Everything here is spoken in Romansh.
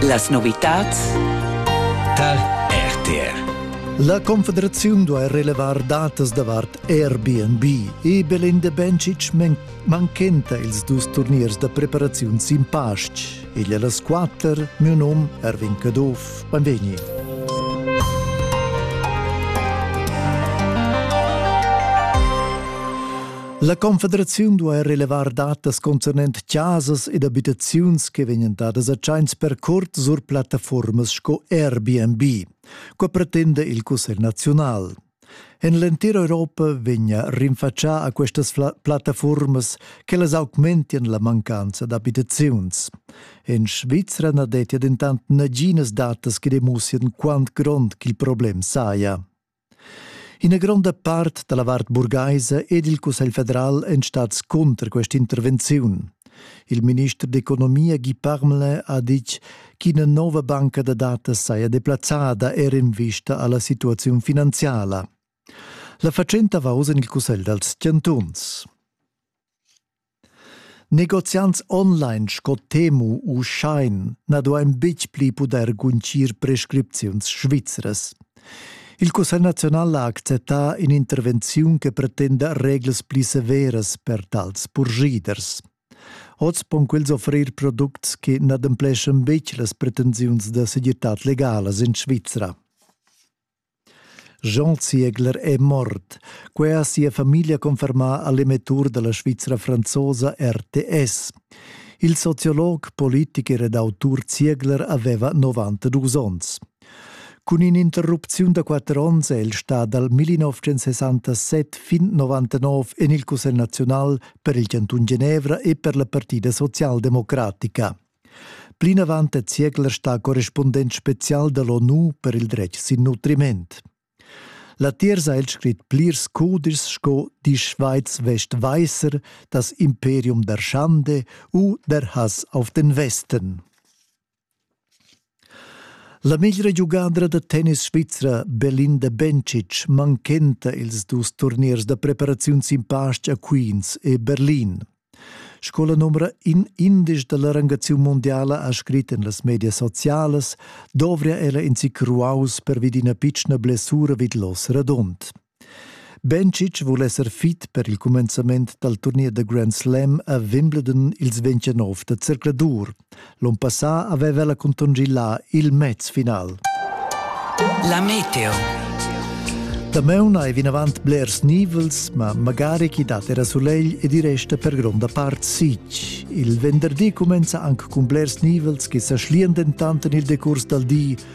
Las novitads tar RTR. La Confederaziun duai relevar datas davart Airbnb e Belinda Bencic manchenta ils dus turniers da preparaziun sin pastg. Egl a las quatter, mio num Erwin Caduff. Benvegni. La Confederaziun duai relevar datas concernent chasas ed abitaziuns che vegnan dadas a tschains per curt sur plattaformas sco Airbnb. Qua pretenda il Cussegl naziunal. En l'entira Europa vegna rinfatschà a questas plattaformas che las augmentian la mancanza d'abitaziuns. En Svizra na dettia dentant naginas datas che demussian quant grond ch'il problem saja. Ina gronda part dalla vart burgaisa ed il Cussegl federal èn stads cunter quest'intervenziun. Il minister d'economia Guy Parmelin ha ditg ch'ina nova banca da datas saja deplazzada er en vista alla situaziun finanziala. La fatschenta va oz en il Cussegl dals chantuns. Negoziants online sco Temu u Shine na duain betg pli pudair guntgir prescripziuns svizras. Il Cussegl naziunal ha acceptà in'intervenziun che pretenda reglas pli severas per tals purschiders. Oz pon quels offrir products che n'adempleschan betg las pretensiuns da segirtad legala in Svizra. Jean Ziegler è mort. Quai ha sia famiglia confermà a l'emettur da la Svizra franzosa RTS. Il sociolog, politicher ed autur Ziegler aveva 92 onns. Cun in'interrupziun da quatter onns è el stà dal 1967 fin 99 en il Cussegl naziunal per il chantun Genevra e per la Partida socialdemocratica. Plinavant è Ziegler stà correspundent spezial da l'ONU per il dretg sin nutriment. Latiers ha el scrit plirs cudis sco Die Schweiz West Weißer, das Imperium der Schande u Der Hass auf den Westen. La meglra giugadra da tennis svizra Belinda Bencic manchenta ils dus turniers da preparaziun sin pastg a Queens e Berlin. Sco la numra in indesch da la rangaziun mundiala ha scrit en las medias socialas, dovria ella in zic ruaus pervi d'ina pitschna blessura vid l'os radund. Bencic vul esser fit per il cumenzament dal turnier da Grand Slam a Wimbledon ils 29 da zercladur. L'onn passà aveva ella contongì là il mez-final. La meteo. Damaun hai vinavant blers nivels, ma magari chi dat era sulegl ed i resta per gronda part sitg. Il venderdi cumenza anche cun blers nivels che sa schlian dentant en il decurs dal di,